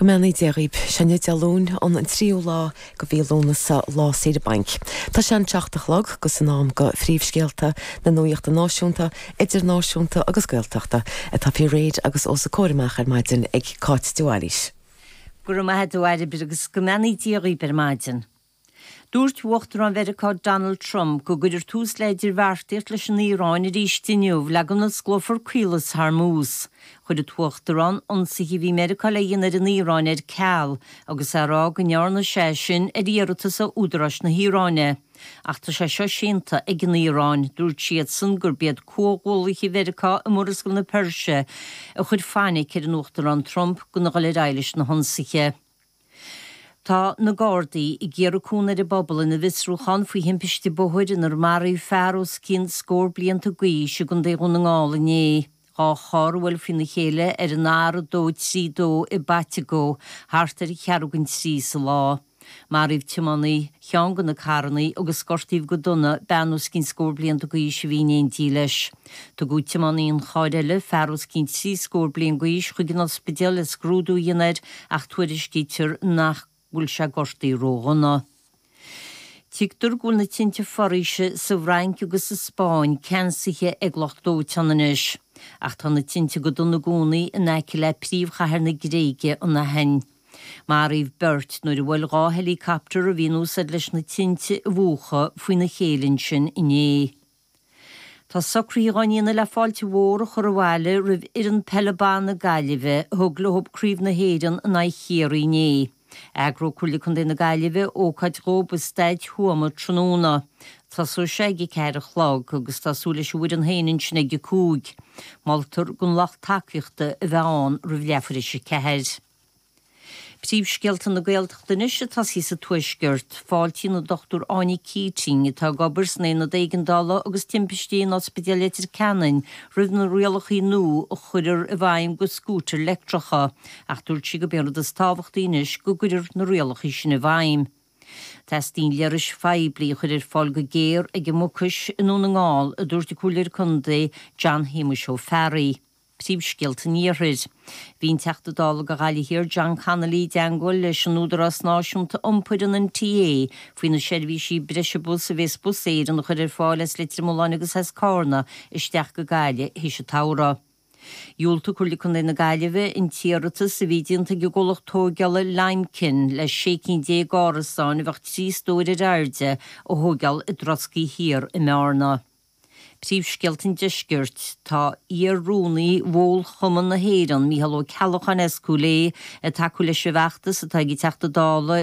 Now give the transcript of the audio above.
Go mbeannaí Dia dhaoibh. Sé inniu Dé Luain, an an tríú lá go mhí Lúnasa, lá saoire bainc. Tá sé an seacht a chlog gus in am go phríomhscéalta na nuachta náisiúnta, idirnáisiúnta agus Gaeltachta, atá faoi réir agus os a comhair amach ar maidin ag Cáit de Bhailís. Go raibh maith 'ad, a Bhairbre, agus go mbeannaí Dia dhaoibh ar maidin. Dúirt Uachtarán Mheiriceá Donald Trump go gcuirfear tús le idirbheartaíocht leis an Iaráin arís inniu le go n-osclófar Caolas Harmús. Chuir an tUachtarán ionsaithe a bhí Meiriceá le déanamh ar an Iaráin ar ceal agus é ag rá go ndearna sé sin ar iarratas ó údaráis na hIaráine. Ach tá sé seo séanta ag an Iaráin. Dúirt siadsan gurb iad comhghuallaithe Mheiriceá i Murascaill na Peirse a chuir fainic ar an Uachtarán Trump gan a dhul ar aghaidh leis na hionsaithe. Tá na Gardaí ag iarraidh cúnamh ar an bpobal ina bhfiosrúchán faoi thimpiste bóthair inar maraíodh fear os cionn scór bliain d'aois i gContae Dhún na nGall inné. Dhá charr a bhuail faoina chéile ar an R232 i bPaiteagó thart ar a ceathrú go trí sa lá. Maraíodh tiománaí cheann de na carranna agus gortaíodh go dona bean os cionn scór bliain d'aois a bhí in éindí leis. Tugadh tiománaí an chairr eile, fear os cionn trí scór bliain d'aois, chuig an ospidéal le scrúdú a dhéanamh air ach tuairiscítear nach bhfuil sé gortaithe ródhona. Tuigtear go bhfuil na tinte foraoise sa bhFrainc agus sa Spáinn ceansaithe ag lucht dóiteáin anois. Ach tá na tinte go dona i gcónaí in aice le príomhchathair na Gréige, an Aithin. Maraíodh beirt nuair a bhuail dhá helicopter a bhí in úsáid leis na tinte a mhúchadh faoina chéile ansin inné. Tá socruithe dhá ndéanamh le fáilte mhór a chur abhaile roimh fhoireann peile ban na Gaillimhe a thug leo Craobh na hÉireann in aghaidh Chiarraí inné. Eagróidh Comhairle Contae na Gaillimhe ócáid dhóibh i Staid Thuama tráthnóna. Tosóidh sé ag a ceathair a chlog agus tá súil leis an bhfoireann féin ansin ag a cúig. Moltar don lucht tacaíochta a bheith ann roimh leathuair théis a ceathair. Príomhscéalta na Gaeltachta anois ag tosaí sa Tuaisceart. Fáiltíonn an Dr Áine Keating, atá ag obair san Aonad Éigeandála agus Timpistí in Ospidéal Leitir Ceanainn, roimh na rialacha nua a chuirfear i bhfeidhm do scútair leictreacha, ach dúirt sí gurb é an rud is tábhachtaí anois go gcuirfear na rialacha sin i bhfeidhm. Teastaíonn leithris phoiblí a chur ar fáil go géar ag an Mucais i nDún na nGall, a dúirt an Comhairleoir Contae John Shéamuis Ó Fearraigh. Príomhscéalta an Iarthair. Bhí an Teachta Dála do Ghaillimh Thiar John Connolly i dteangmháil leis an Údarás Náisiúnta Iompair, an NTA, faoi na seirbhísí breise bus a bhéas Bus Éireann a chur ar fáil as Leitir Mealláin agus as Carna isteach go Gaillimh théis an tsamhraidh. Dhiúltaigh Comhairle Contae na Gaillimhe an t-iarratas a bhí déanta ag an gcomhlacht tóigeála Limekiln le sé cinn déag d'árasáin a bheadh trí stóir ar airde a thóigeál i dTroscaí Thiar i mBearna. Príomhscéalta an Deiscirt, Tá iar-rúnaí Bhól-Chumann na hÉireann, Micheál Ó Ceallacháin as Cúil Aodha, ag tacú leis an bhfeachtas atá ag an Teachta Dála,